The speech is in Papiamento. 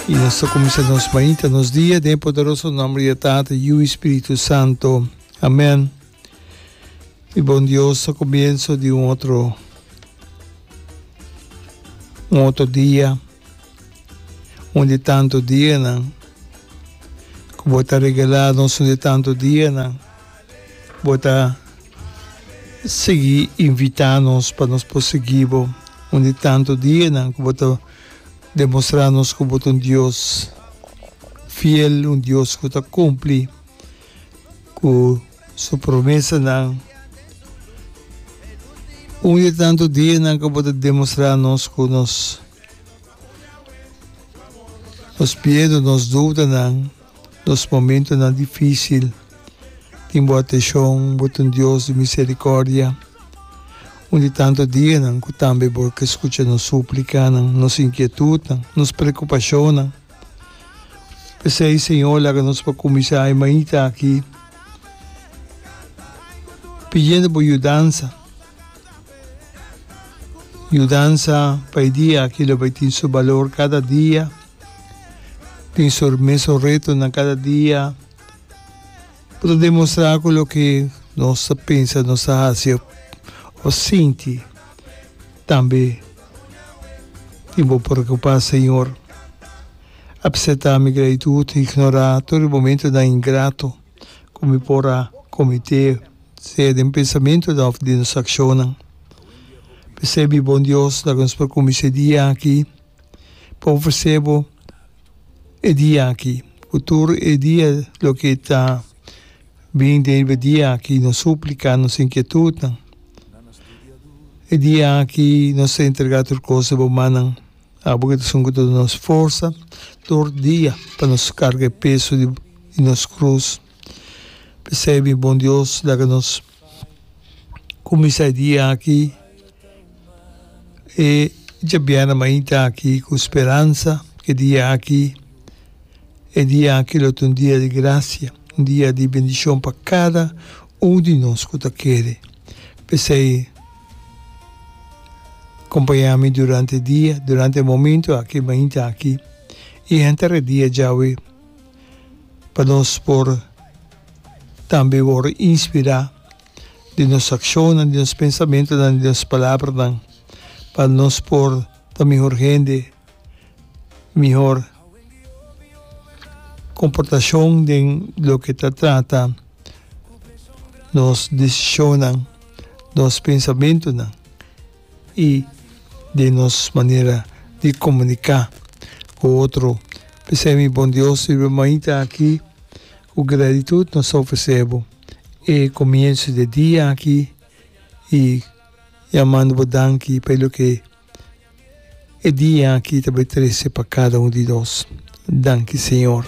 Y nos ta cuminsa nos mañita, nos dia, den poderoso nombre de Tata, Yu y Spiritu Santo. Amen. Mi bon Dios, a comienzo di un otro, un otro dia, un di tanto dia nan, que vos ta regalá nos un di tanto dia nan, vos ta sigui invitá nos pa nos por sigui bo, un di tanto dia nan, que vos ta Demostrá nos ku bo ta un Dios fiel, un Dios ku ta kumpli ku su promesanan. Un di e tantu dianan ku bo ta demostrá nos ku nos miedu, nos dudanan. Nos momentonan difísil tin bo atenshon, bo ta un Dios di miserikòrdia. Un di tantu dianan ku tambe bo ke skucha nos súplikanan, nos inkietutnan, nos preokupashonnan. P'esei, Señor, laga nos pa kuminsá e mainta aki pidiendo bo yudansa, yudansa pa e dia aki lo bai tin su balor kada dia. tin su mesun retonan kada dia, por ta demostrá ku loke nos ta pensa, nos ta hasi o sinti tambe tin bo preokupá, Señor. A presentá mi gratitud, ignorá tur e momentunan ingrato ku mi por a kometé, sea den pensamentunan òf den nos akshonnan. P'esei, mi Bon Dios, laga nos por kuminsá e dia aki. pa ofresé bo e dia aki, ku tur e dia loke ta bin debe e dia aki, nos súplika, nos inkietutnan. E dia aki nos ta entregá tur kos riba bo mannan, abo ku ta esun ku ta duna nos forsa tur dia pa nos karga e peso di nos krus. P'esei mi Bon Dios laga nos. Kuminsá e dia aki e djabièrnè mainta aki ku speransa ku e dia aki e dia aki lo ta un dia di grasia, un dia di bendishon pa kada un di nos ku ta kere. P'esei kompañá mi durante e dia, durante e momentu aki mainta aki i henter e dia djawe. pa nos por tambe wòrdu inspirá den nos akshonnan, den nos pensamentunan, den nos palabranan, pa nos por ta mihor hende, mihor komportashon den loke ta trata nos desishonnan, nos pensamentunan. y den nos manera di comunica cu otro. P'esey mi bon Dios y mi Mamita aki, cu gratitud nos ta ofrece bo e comienzo di e dia aki y yamando bo danki pa e loke e dia aki ta bay trece pa cada un di nos. Danki Señor.